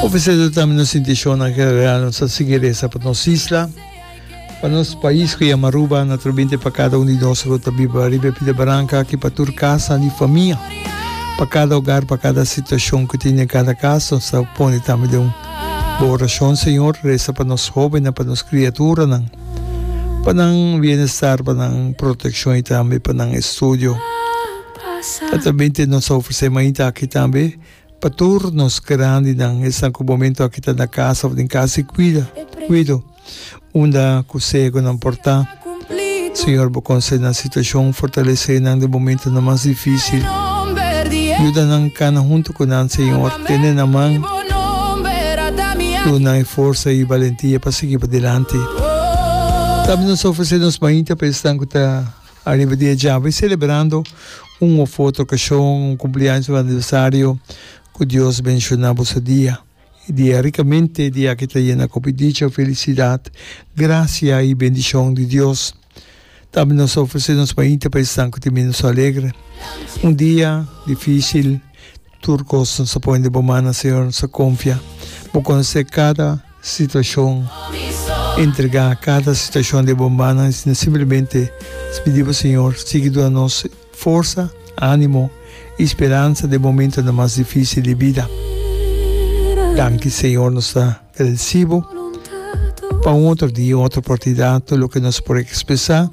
O biseso tambe nos sinti shona ke real nos a sigui resa pa nos isla, pa nos pais ku yama Aruba, na tur binti pa kada un di nos ku ta biba riba e pita baranka aki pa tur kasa di famia, pa kada ogar, pa kada situashon ku tin den kada kas. Nos ta pone tambe den bo orashon Señor, resa pa nos hobennan, pa nos kriaturanan, pa nan bienestar, pa nan protekshon i tambe pa nan estudio. Tabata binti nos a ofresé mainta aki tambe. Pa tur nos grandinan esnan ku momento aki ta na kasa òf den kasa i kuida kuido unda ku segonan por ta. Señor bo konsé nan situashon, fortalesé nan den momentonan mas difísil. Yuda nan kana huntu ku nan Señor, tene nan man, dunnan e forsa i balentia pa sigui padilanti. Tambe nos ofresé nos mainta pa esnan ku ta. Ariba di e djaba i selebrando un of otro okashon, un kumpliaños of aniversario, ku Dios menshoná boso dia. E dia rikamente, e dia aki ta yena ku hopi dicha, felisidat, grasia i bendishon di Dios. Tambe nos ta ofresé nos mainta pa esnan ku tin minoso alegre. Un dia difísil. Tur cosnan sa pone di bo man na Señor, no sa confia. Bo conoce cada situacion, entrega cada situacion di bo mannan y sino simplemente pidi bo Señor sigui duna nos forsa, animo y speransa den momentonan mas dificil di bida. Danki Señor nos ta. El sibo pa un otro dia, otro oportunidad, tur loke nos por expresa,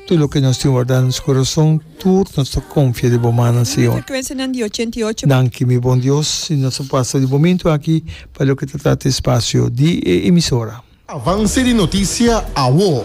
tur loke nos tin warda nos corazon, tur nos ta confia di bo manan, Señor. Danki, mi bon Dios, y nos a pasa di momento aki pa loke ta trata e espacio di e emisora. Avance di noticia awo.